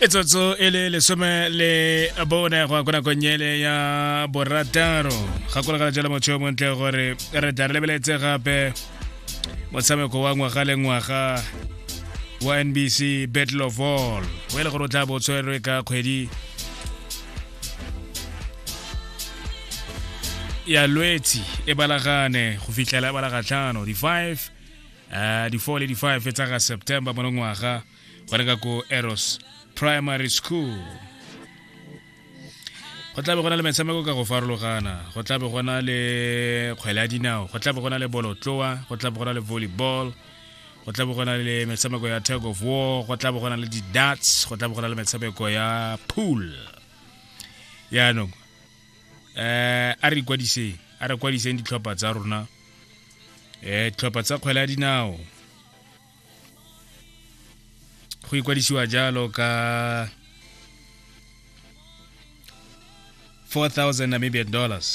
e tsotso e le lesome le bone go ya ko nakong ele ya borataro gakologala jalo motho yo montle gore re tla re lebeletse gape motshameko wa ngwaga le ngwaga wa nbc battle of all o e le gore o tla bo tshwerwe ka kgwedi ya lwetsi e balagane go fitlhela e balagatlhano di-five uh, di-4 le di-5 tsa ga september mo ngwaga go reka ko eros primary school go tlabe go na le metshameko ka go farologana go tlabe go na le kgwele ya dinao go tlabe go na le bolotloa go tlabe go na le volleyball go tlabe go na le metshameko ya tag of war go tlabe go na le di-darts go tlabe go na le metshameko ya pool yaanong um a re ikwadiseng a re kwadiseng ditlhopha tsa rona eh tlhopha tsa kgwele ya dinao go ikwadisiwa jalo ka 4000 namibian dollars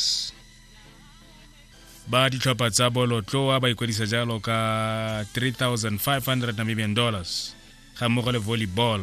ba ditlhopha tsa bolotloa ba ikwadisa jalo ka 3500 namibian dollars ga mmogo le volleyball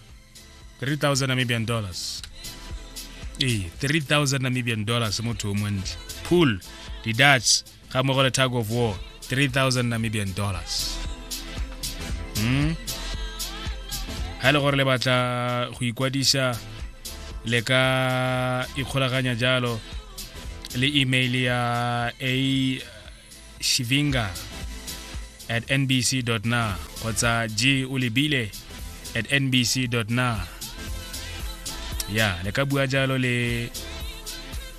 3000 namibian dollars ee 3000 namibian dollars motho o montle pool di-dutch ga mmogo le tag of war 3000 namibian dollars mm? ga e le gore le batla go ikwadisa le ka ikgolaganya jalo le email ya a shivinga at nbc na kgotsa g o lebile at nbc na ya le ka bua jalo le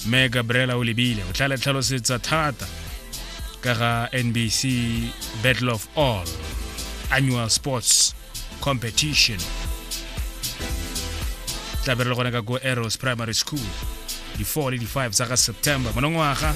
me gabriela o lebile o tla le tlhalosetsa thata ka ga nbc battle of all annual sports competition tla be re le gone ka ko arrows primary school di-4 le di-5 tsa ga september monongwaga